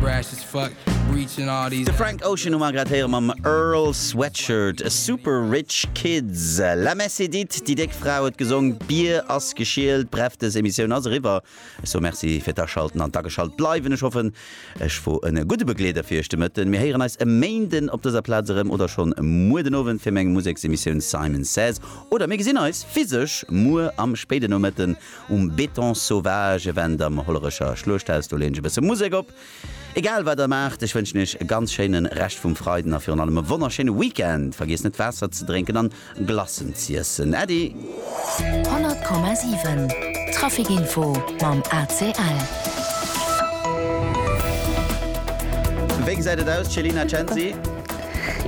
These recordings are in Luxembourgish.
De Frank Ocean hu mer grad héiere mam Earl Sweatshirt, Super Rich Kids. La messe est dite, déi déck Fra huet gesong, d'Bier ass geschielt. Bref, dës Emissioun ass eriwwer. Ech soe Merci fir d'Aschalten an d'Ageschalt bleiwen. Ech hoffen, ech wor en gudde Begleeder fir iech de Mëtten. Mir héieren eis e Méinden op dëser Plaz erëm oder schonn muer den Owend fir meng Museksemissioun Simon Says. Oder mir gesinn eis physesch muer am spéiden Nomëtten. Um Béton Sauvage, Event am Hollerecher Schluechthaus, do leeën ech e bësse Musek op. Egal wat der maacht, ech wënschen iech e ganz schéine Rescht vum Freiden a virun allem e wonnerschéine Weekend. Vergiesst net Waasser ze drénken an Glacen z'iessen. Äddi! 100,7 Trafic Info mam ACL. Wéi gesäit et aus, Céline Acensi?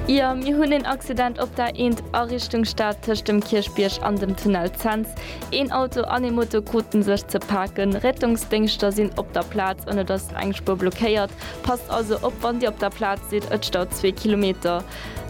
Jo, mir hunn een Accident op der Eent a Richtung Stad tëscht dem Kierchbierg an dem Tunnel Cents. Een Auto an ee Moto kruten sech ze paken. Rettungsdéngschter sinn op der Plaz an et ass eng Spuer blockéiert. Passt also op wann Dir op der Plaz sidd, et staut zwee Kilometer.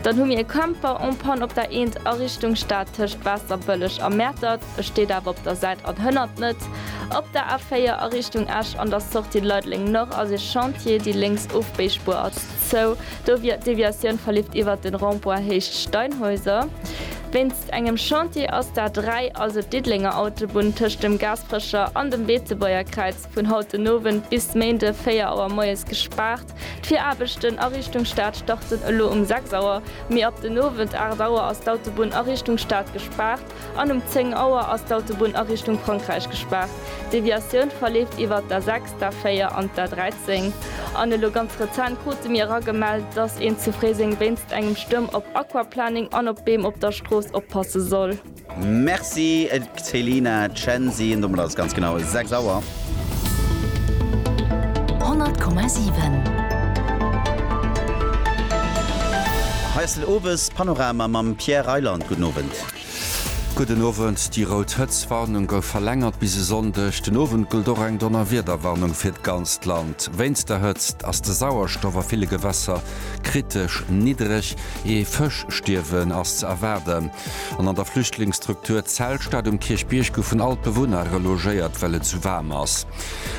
Dann hu mir e Camper en panne op der Eent a Richtung Stad tëscht Waasserbëlleg a Mäertert. E steet awer op der Säit an hënnert net. Op der A4 a Richtung Esch an der Sortie Leideleng-Nord ass e Chantier, déi lénks Ofbéispuer ass. Sou, do wier d'Deviatioun verlift iwwert den Rond-point Héicht Steinhäuser. Wéinst engem Chantier ass d'A3, also d'Diddelenger Autobunn tëscht dem Gaasperecher an dem Beetzebäuer Kräiz, vun haut den Owend bis Méinde 4 Auer moies gespaart. D'Viraarbechten a Richtung Stad starten elo um 6 Auer, mee ab den Owend 8 Auer ass d'Autobunn a Richtung Stad gespaart. An um 10 Auer ass d'Autobunn a Richtung Frankräich gespaart. D'Deviatioun verleeft iwwert d'A6, d'A4 an d'A13. An elo ganz rezent krute mir eragemellt, dass een zu Fréiseng wéinst engem Stuerm op Aquaplaning an op Beem op der Strooss oppasse soll. Merci Céline Chancy. Domat ass et ganz genau 6 Auer. 100,7. Hei ass den Owespanorama mam Pierre Reyland. Gudden Owend. Gudden Owend, Déi rout Hëtztwarnung gouf verlängert bis e Sonndeg den Owend. Gëllt och eng Donnerwiederwarnung fir d'ganzt Land. Wéinst der Hëtzt ass de Sauerstoff a ville Gewässer kritesch niddreg. Ee Fëschstierwen ass ze erwaarden. An an der Flüchtlingsstruktur Zelstadt um Kierchbierg goufen all d'Bewunner relogéiert, well et sou waarm ass.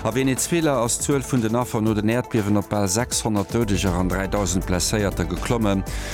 A Venezuela ass d'Zuel vun den Affer no den Äerdbiewen op bal 600 Doudeger an 3.000 Blesséierter geklommen.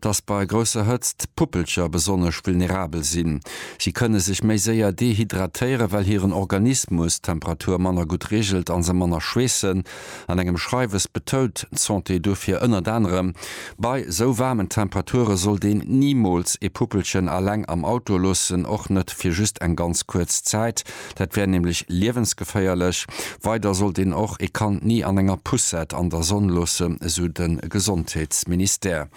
dass bei grousser Hëtzt d'Puppelcher besonnesch vulnerabel sinn. Si kënne sech méi séier dehydratéieren, well hiren Organismus d'Temperatur manner gutt reegelt a se manner schweessen. An engem Schreiwes betount d'Santé dofir ënnert anerem, Bei sou waarmen Temperature sollt een nimools ee Puppelchen aleng am Auto loossen, och net fir just eng ganz kuerz Zäit. Dat wär nämlech liewensgeféierlech. Weider sollt een och ee Kand ni an enger Poussette an der Sonn loossen, esou de Gesondheetsministère.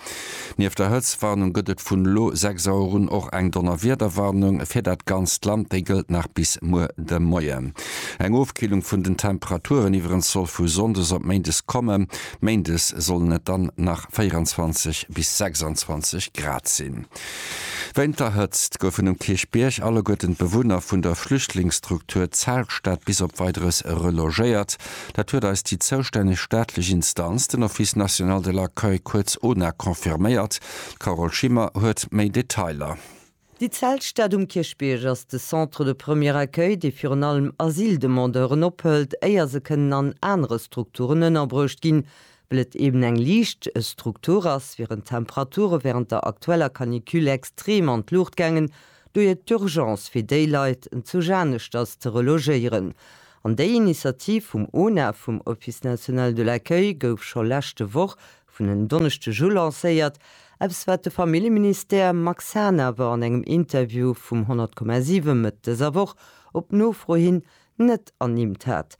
Nieft der Hëtztwarnung gëtt et vun elo 6 Auer un och eng Donnerwiederwarnung fir dat ganzt Land. Déi gëllt nach bis muer de Moien. Eng Ofkillung vun den Temperaturen iwwerens soll vu sonndes op méindes kommen. Méindes sollen et dann nach 24 bis 26 Grad sinn. Wéint der Hëtzt goufen um Kierchbierg alleguerten d'Bewunner vun der Flüchtlingsstruktur Zeltstad bis op Weideres relogéiert. Dat huet eis déi zoustänneg staatlech Instanz, den Office National de l'Accueil, kuerz ONAC, confirméiert. D'Carole Schimmer huet méi Detailer. Déi Zeltstad um Kierchbierg ass de Centre de premier accueil, dee virun allem Asyldemandeuren ophëlt, éier se kënnen an anere Strukturen ënnerbruecht ginn, Well et eben eng liicht Struktur ass, wieren d'Temperature wärend der aktueller Canicule extrem an d'Luucht gaangen. Dohier d'Urgence fir déi Leit zu Janeschter ze relogéieren. An déi Initiativ vum ONA, vum Office National de l'Accueil, gouf scho leschte Woch vun en Donneschdeg u lancéiert, eppes wat de Familljeministère Max Hahn awer an engem Interview vum 100,7 Mëtt dëser Woch op Nofro hin net ernimmt hat.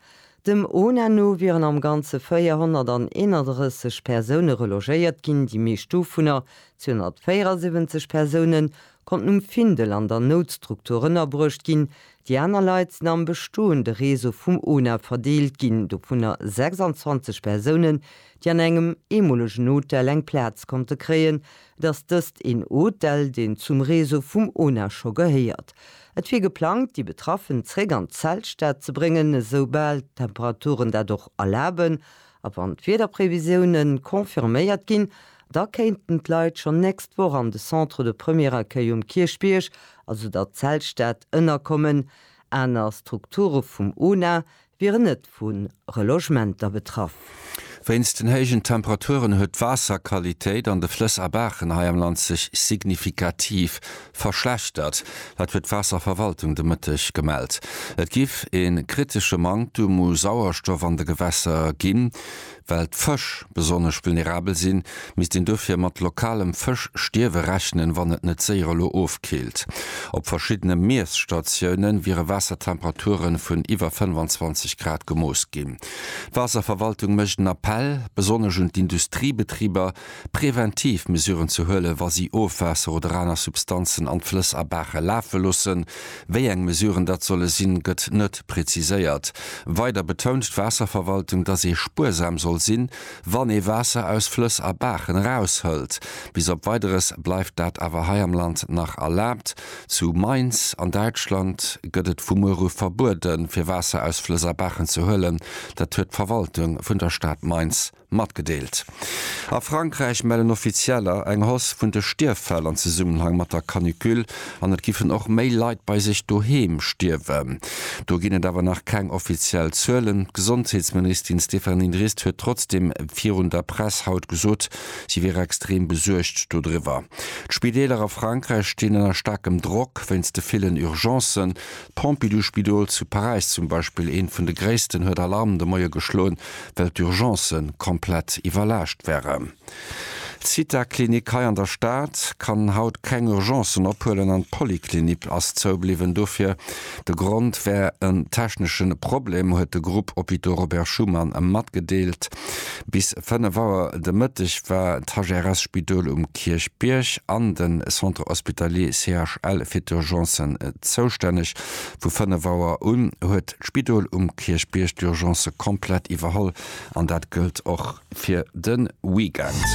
Dem ONA no wieren am Ganze 431 Persoune relogéiert ginn, déi meescht dovunner, 274 Persounen, konnten um Findel an der Noutstruktur ënnerbruecht ginn. Déi aner Leit sinn am bestoende Réseau vum ONA verdeelt ginn, dovunner 26 Persounen, déi an engem eemolegen Hotel eng Plaz konnte kréien, dass dëst een Hotel, deen zum Réseau vum ONA scho gehéiert. Et wier geplangt, déi Betraffen zréck an d'Zeltstad ze bréngen, esou bal d'Temperaturen dat och erlaben. A wann d'Wiederprevisiounen confirméiert ginn, da kéinten d'Leit schonn nächst Woch an de Centre de Premier Accueil um Kierchbierg, also der Zeltstad, ënnerkommen. Aner Strukture vum ONA wieren net vu Relogementer betraff. Wéinst den héijen Temperaturen huet d'Waasserqualitéit an de Flëss a Baachen hei am Land sech signifikativ verschlechtert. Dat huet d'Waasserverwaltung de Mëtteg gemellt. Et giff ee kritesche Manktum u Sauerstoff an de Gewässer ginn. Well d'Fësch besonnesch vulnerabel sinn, misst een dofir mat lokalem Fëschstierwe rechnen, wann et net séier elo ofkillt. Op verschiddene Miesstatiounen wiere Waassertemperature vun iwwer 25 Grad gemooss ginn. D'Waasserverwaltung mécht en Appell besonnesch un d'Industriebetriber, preventiv Mesuren ze huelen, wa si Ofwaasser oder aner Substanzen an d'Flëss a Baache lafe loossen, Wéi eng Mesuren dat solle sinn, gëtt net preziséiert. Weider betount d'Waasserverwaltung, datt ee spuersam soll sinn, wann ee Waasser aus Flëss a Baachen eraushëlt. Bis op Weideres bleift dat awer hei am Land nach erlaabt. Zu Mainz an Däitschland gëtt et vu muer u verbueden, fir Waasser aus Flëss a Baachen ze huelen. Dat huet d'Verwaltung vun der Stad Mainz Matgedeelt. A Frankräich mellen Offizieller eng Hausse vun de Stierffäll an Zesummenhang mat der Canicule an et giffen och méi Leit bei sech doheem stierwen. Do ginn et awer nach keng offiziell Zuelen. D'Gesondheetsministin Stéphanie Drest huet trotzdeem virun der Press haut gesot, si wier extrem besuergt dodriwwer. D'Spideeler a Frankräich stinn ënner staarkem Drock wéinst de villen Urgencen. D'Pompidou-Spidol zu Paräis zum Beispill, eent vun de gréissten, huet Alarm de Moie geschloen, well d'Urgencë komplett iwwerlaascht wären. D'Zitha-Klinik hei an der Stad kann haut keng Urgencen ophuelen an d'Polyclinique ass zoubliwwen. Dofir, de Grond wär en technesche Problem, huet de Groupe Hôpitaux Robert Schuman matgedeelt. Bis 5 Auer de Mëtteg war d'HRS-Spidol um Kierchbierg an de Centre Hospitalier CHL fir d'Urgencen zoustänneg, Vu 5 Auer un huet d'Spidol um Kierchbierg d'Urgence komplett iwwerholl an dat gëllt och fir de Weekend.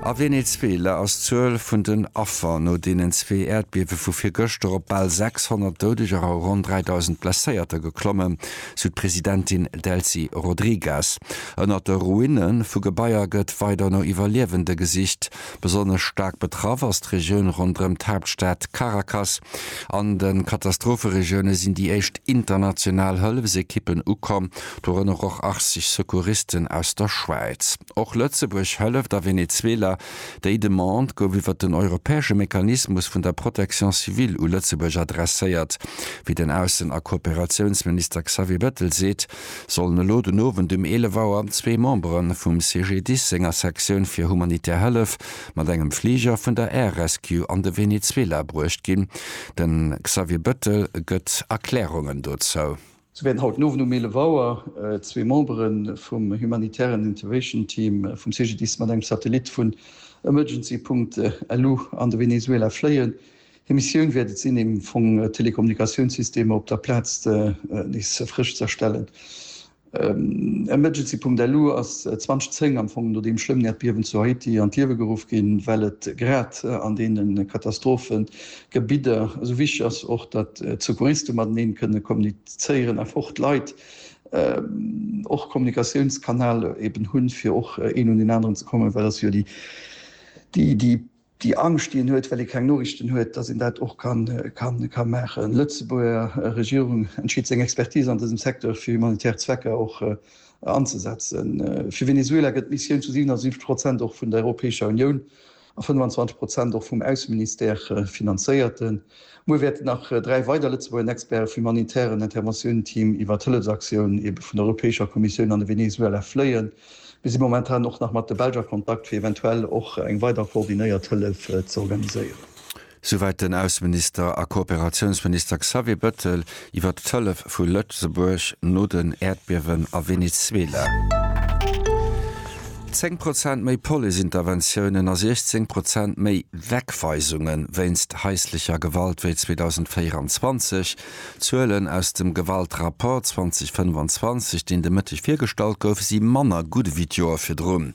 A Venezuela ass d'Zuel vun den Affer no deenen zwee Äerdbiewe vu virgëschter op bal 600 Doudeger a ronn 3.000 Blesséierter geklommen, sou d'Presidentin Delcy Rodriguez. Ënnert de Ruine vu Gebaier gëtt weider no Iwwerliewende gesicht. Besonnesch staark betraff ass d'Regioun ronderëm d'Haaptstad Caracas. An de Katastropheregioune sinn déi éischt international Hëllefsekippen ukomm, dorënner och 80 Secouristen aus der Schwäiz. Och Lëtzebuerg hëlleft a Venezuela. Déi Demande gouf iwwer den europäesche Mechanismus vun der Protection civile u Lëtzebuerg adresséiert, wéi den Aussen a Kooperatiounsminister Xavier Bettel seet. sollen elo den Owend um 11 Auer zwee Membere vum CGDIS senger Sektioun fir humanitär Hëllef mat engem Fliger vun der Air Rescue an de Venezuela bruecht ginn. De Xavier Bettel gëtt Erklärungen dozou. Sou wäerten haut den Owend um 11 Auer zwee Membere vum humanitären Intervation Team vum CGDIS mat engem Satellit vun Emergency-Punkt elu an de Venezuela fléien. Hir Missioun wäert et sinn, am Fong d'Telekommunikatiounssystemer op der Plaz nees frësch ze erstellen. Emergency.lu ass 2010, am Fong no deem schlëmmen Äerdbiewen zu Haiti, an d'Liewe geruff ginn, well et grad an deene Katastrophegebidder esou wichteg ass och, datt d'Secouriste mateneen kënne kommunizéieren a fort Leit och e Kommunikatiounskanal eben hunn, fir och een un deen aneren ze kommen, well ass jo déi déi Angscht déi een huet well ee keng Noriichten huet, datt een dat och ka maachen. D'Lëtzebuerger Regierung entscheet seng Expertise an dësem Secteur fir humanitär Zwecker och anzesetzen. Fir Venezuela gëtt d'Missioun zu 77 Prozent och vun der Europäescher Unioun a 25 Prozent och vum Ausseministère finanzéiert. Muer wäerten nach dräi weider Lëtzebuerger Experte vum humanitären Interventioun-Team iwwer d'Hëllefsaktioun ebe vun der Europäescher Kommissioun an de Venezuela fléien. Mir si momentan och nach mat de Belsch a Kontakt, fir eventuell och eng weider koordinéiert Hëllef ze organiséieren. Souwäit den Ausseminister a Kooperatiounsminister Xavier Bettel iwwer d'Hëllef vu Lëtzebuerg no den Äerdbiewen a Venezuela. Zéng Prozent méi Police-Interventiounen a 16 Prozent méi Wegweisunge wéinst haislecher Gewalt wéi 2024. D'Zuelen aus dem Gewaltrapport 2025, deen de Mëtteg virgestallt gouf, si manner gutt ewéi d'Joer virdrun.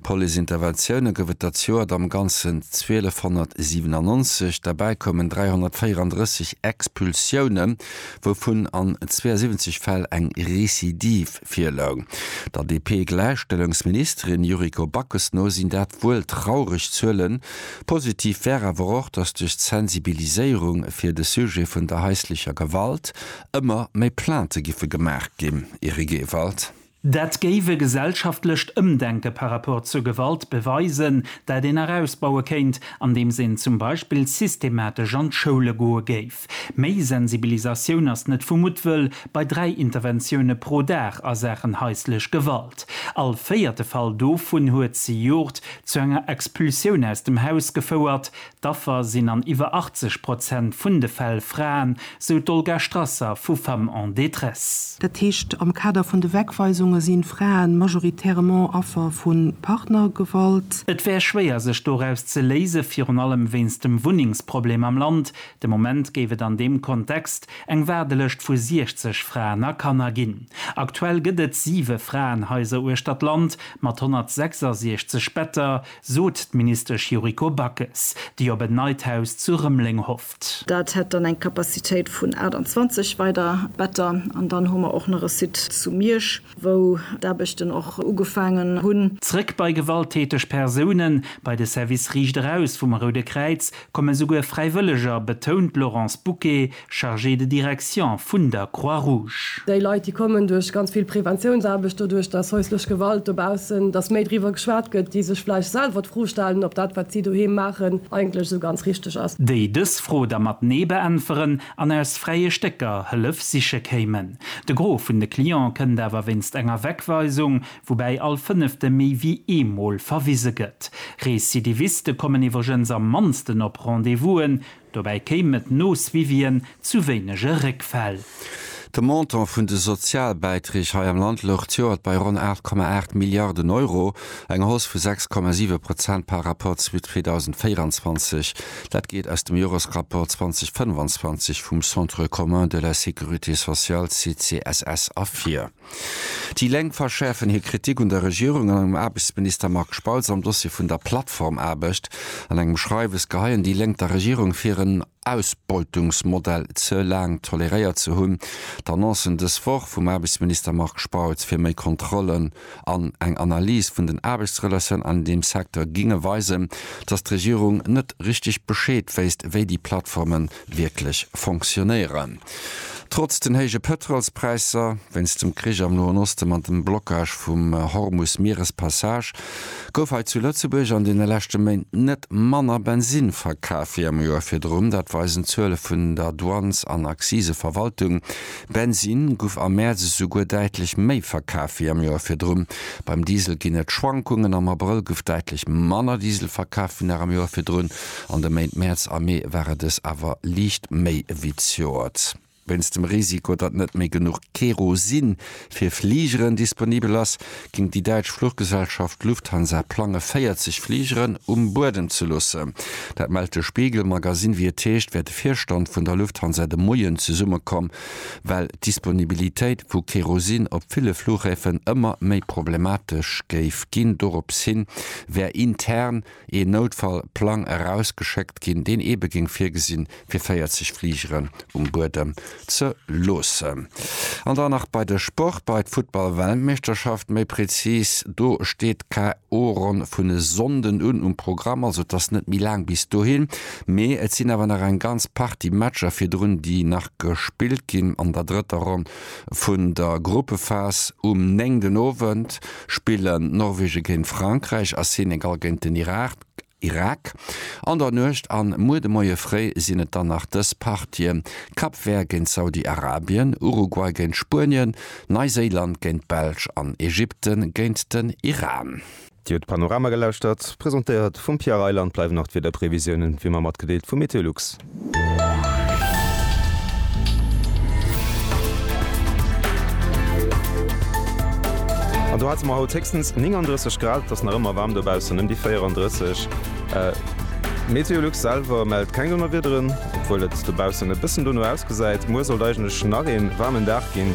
Policeinterventioune gouf et dat Joer et am Ganzen 1297, derbäi koumen 334 Expulsioune, wouvun an 72 Fäll eng Recidive virloung. Der DP-Gläichstellungsministerin Yuriko Backes no sinn dat wuel traureg Zuelen. Positiv wär awer och, datt duerch d'Sensibiliséierung fir de Sujet vun der haislecher Gewalt ëmmer méi Plainte giffe gemaach ginn. Eric Ewald. Dat géif e gesellschaftlecht Ëmdenke par rapport zur Gewalt beweisen, dat een nach ausbaue kéint, andeems een zum Beispill systematesch an d'Schoule goe géif. Méi Sensibilisatioun ass net vu Muttwëll bei dräi Interventioune pro Dag a Saachen haislech Gewalt. All véierte Fall dovun huet zejoert zu enger Expulsioun aus dem Haus gefouert. D'Affer sinn an iwwer 80 Prozent vun de Fäll Fraen, sou d'Olga Strasser vu Femmes en détresse. Dat heescht, am Kader vun de Wegweisunge sinn Fraen majoritairement Affer vu Partnergewalt. Et wär schwéier sech doraus ze léisen, virun allem wéinst dem Wunnengsproblem am Land. De Moment géif et an deem Kontext eng Waardelëscht vu 60 Fraen a Kanner ginn. Aktuell gëtt et siwe Fraenhaiser uechter d'Land mat 166 Better, sot d'Ministesch Yuriko Backes, déi op en neit Haus zu Rëmeleng hofft. Dat hätt dann eng Capacitéit vun 28 weider Better. An dann hu mer och nach e Site zu Miersch, wou d'Aarbechten och ugefaangen hunn. Zréck bei gewalttäteg Persounen, bei de Service Riicht eraus vum Roude Kräiz. Komme souguer Fräiwëlleger, betount d'Laurence Bouquet, Chargée de direction vun der Croix-Rouge. Déi Leit, déi kommen duerch ganz vill Preventiounsaarbecht, doduerch, datt haislech Gewalt dobaussen, datt méi driwwer geschwat gëtt, déi sech vläicht selwer d'Fro stellen, ob dat, wat si doheem maachen, eigentlech esou ganz richteg ass. Déi dës Fro da mat Nee beäntweren an aus fräie Stécker Hëllef siche kéimen. De Gros vun de Cliente kënnt awer wéinst enger Wegweisung, woubäi all Fënnefte méi wéi eemol verwise gëtt. Recidiviste kommen iwwregens am mannsten op Rendez-vousen, dobäi kéim et no Suivien zu wéinege Réckfäll. De Montant vun de Sozialbäiträg hei am Land louch d'Joert bei ronn 8,8 Milliarden Euro, eng Hausse vu 6,7 Prozent par Rapport zu 2024. Dat geet aus dem Joresrapport 2025 vum Centre commun de la sécurité sociale, CCSS, ervir. Déi Lénk verschäerfen hir Kritik un der Regierung an engem Aarbechtsminister Marc Spautz am Dossier vun der Plattformaarbecht. An engem Schreiwes geheien déi Lénk der Regierung vir, en Ausbeutungsmodell ze laang toleréiert ze hunn. D'Annoncen dës Woch vum Aarbechtsminister Marc Spautz fir méi Kontrollen an eng Analys vun den Aarbechtsrelatiounen an deem Secteur géinge weisen, datt d'Regierung net richteg Bescheed wéisst, wéi déi Plattformen wierklech fonctionnéieren. Trotz den héije Pëtrolspräisser wéinst dem Krich am Noen Osten an dem Blockage vum Hormus-Mierespassage gouf hei zu Lëtzebuerg an deene leschte Méint net manner Bensinn verkaf wéi am Joer virdrun. Dat weisen d'Zuele vun der Douanes an Akziseverwaltung. Bensinn guff am Mäerz esouguer däitlech méi verkaf wéi am Joer virdrun. Beim Diesel ginn et Schwankungen, am Abrëll guff däitlech manner Diesel verkaf wéi nach am Joer virdrun. An de Méint Mäerz a Mee war et es awer liicht méi ewéi d'Joert. Wéinst dem Risiko, datt net méi genuch Kerosin fir Fligeren disponibel ass, géing déi däitsch Fluchgesellschaft Lufthansa plange 40 Fligeren um Buedem ze loossen. Dat mellt de Spiegel Magazine. Wéi et heescht, wär de Virstand vun der Lufthansa de Moien zesummekomm, well d'Disponibilitéit vu Kerosin op ville Flughäfen ëmmer méi problematesch géif ginn. Dorops hi wär intern. ee Noutfall-Plang erausgeschéckt ginn, deen eebe géing virgesinn, fir 40 Fligeren um Buedem ze loossen. An dann nach bei de Sport, bei d'Futtball-Weltmeeschterschaft méi prezis. Do steet d'KO-Ronn vun e Sonnden un um Programm. Also et ass net méi laang bis dohin, mee et sinn awer nach eng ganz Partie Matcher virdrun, déi nach gespillt ginn an der drëtter Ronn vun der Gruppephas. Um 9 den Owend spillen Norwegen géint Frankräich a Senegal géint den Irak. An der Nuecht an muer de Moie fréi sinn et dann nach dës Partien, Cap Vert géint Saudi-Arabien, Uruguay géint Spuenien, Neiséiland géint d'Belsch an Ägypten géint den Iran. Dir huet Panorama gelauschtert, presentéiert vum Pierre Reyler an et bleiwen nach d'Wiederprevisiounen wéi ëmmer matgedeelt vu Meteolux. An do hate mer haut héchstens 39 Grad, et ass nach ëmmer waarm dobaussen, ëm déi 34. Meteolux selwer mellt keng Donnerwiederen, obwuel et dobaussen e bëssen dono ausgesäit. Muer sollt eigentlech nach ee waarmen Dag ginn.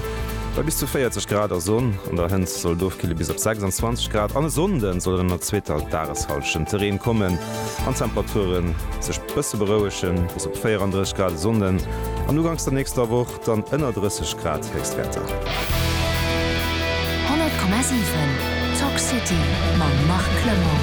Bei bis zu 40 Grad a Sonn an der Hënnt soll et ofkille bis op 26 Grad. An e Sonnde soll et an der zweeter Dageshallschent ze Reen kommen an d'Temperature sech bësse berouegen, bis op 34 Grad e Sonnden an uganks der nächster Woch dann ënner 30 Grad Héchstwäerter. 100,7 Talk City mam Marc Clement.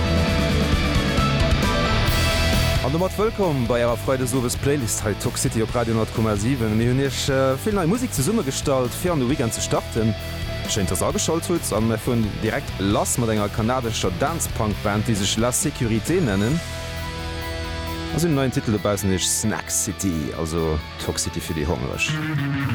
An domat wëllkomm bei ärer Freidesowes Playlist hei Talk City op Radio 100,7. Mir hunn iech. Ech hu vill nei Musik zesumme gestallt fir an de Weekend ze starten. Schéin dass ageschalt hutt an mir fueren direkt lass mat enger kanadescher Dance-Punk Band déi sech La Sécurité nennen a si hunn en neien Titel dobaussen, déi heescht Snack City, also Toxity fir déi Hongereg.